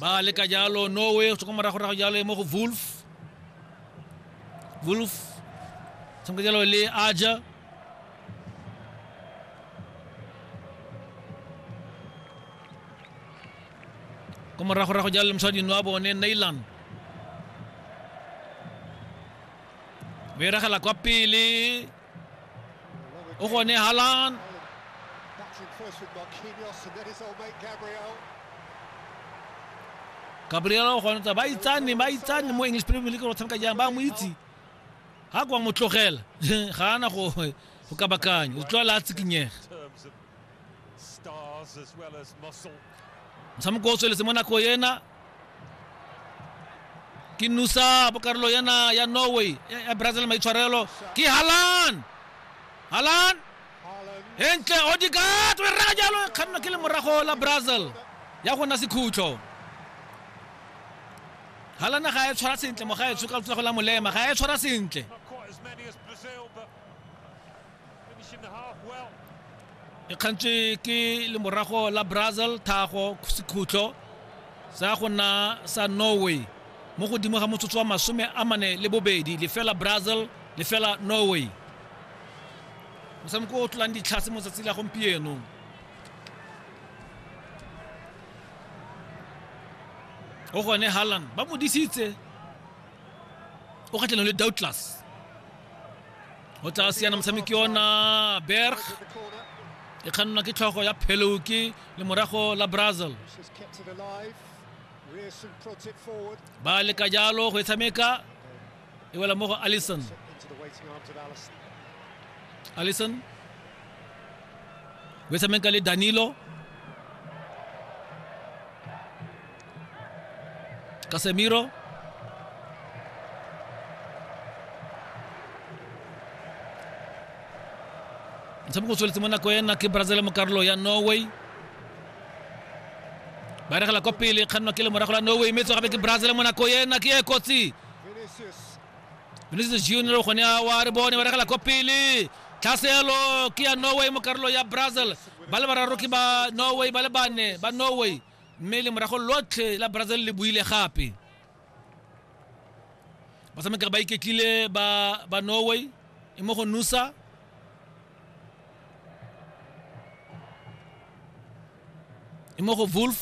ba leka jalo norway go tswa kwa morago rago jalo e mo go wolf wolf tshameka jalo le aja kwa morago rago jalo le mosadino wa bone nailan ba iragela kwa pele O gone Haaland. Gabriel o gone ba itsane ba itsane mo English Premier League go tshameka jang ba mo itse ha kwa mo tlogela ga ana go go ka bakanya o tlwa la tsikinyega motshameko o tsweletse mo nako ena ke nusa bokarolo yana ya norway ya brazil maitshwarelo ke halan halan entle odikat o e reka jalo e kganna ke le morago la brazil ya go nna sekhutlo halana ga e tshwara sentle mo ga e tshoka tsa go la molema ga e tshwara sentle e kgantswe ke lemorago la brazil thago sekhutlo sa go nna sa norway mo godimo ga motsotso wa masome a mane le bobedi lefela brazil lefela norway motshameko o tlolang ditlhase mo tsatsi la gompieno o gone halland ba mo disitse o kgatlhanong le doubtless go tla siana motshameki yona berg e kgannwa ke tlhogo ya pheloki le morago la brazil ba leka jalo go e tshameka e wela mo go allison allison o e tshameka le danilo Casemiro. motshameko o tsweletse mo nako ena ke brazil mo karolo ya norway ba regela kwa pele kgannwa ke le morago la norway mme gape ke brazil mo nako ena ke e kotsi vinicius junior gone wa re bone ba regela kwa pele tlhaselo ke ya norway mo karolo ya brazil ba le bararo ke ba norway ba le bane ba norway mme le morago lotlhe la brazil le buile gape batshamekere ba iketlile ba ba norway e mo go nusa e mo go wolf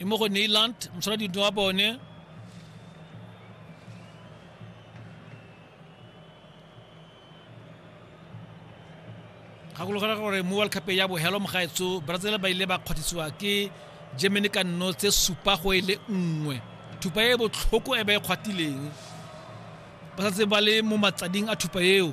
e mo go neyland mosola dintho wa bone gakologela gore mo world cup ya bohelo mogaetso brazil ba ile ba kgwathisiwa ke germany ka nno tse supa go e le nngwe thupa e botlhoko e ba e kgwatileng ba santse ba le mo matsading a thupa eo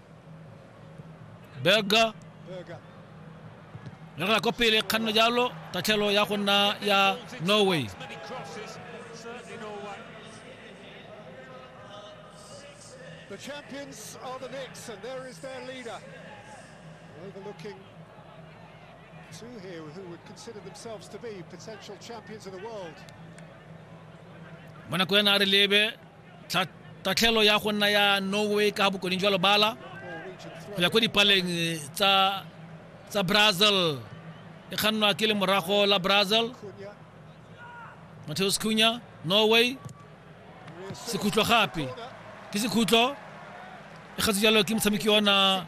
berga le re ko pele kganno jalo tatlhelo ya go nna ya norway The champions are the Knicks, and there is their leader. Overlooking two here who would consider themselves to be potential champions of the world. Mwana kwena a re lebe tatlhelo ya go nna ya norway ka bokoning jwa lobala go ya ko dipaleng eh, tsa tsa brazil e kgannwa ke le morago la brazil mateus cunya norway sekhutlo gape ke sekhutlo e gatse jalo ke motshameki ona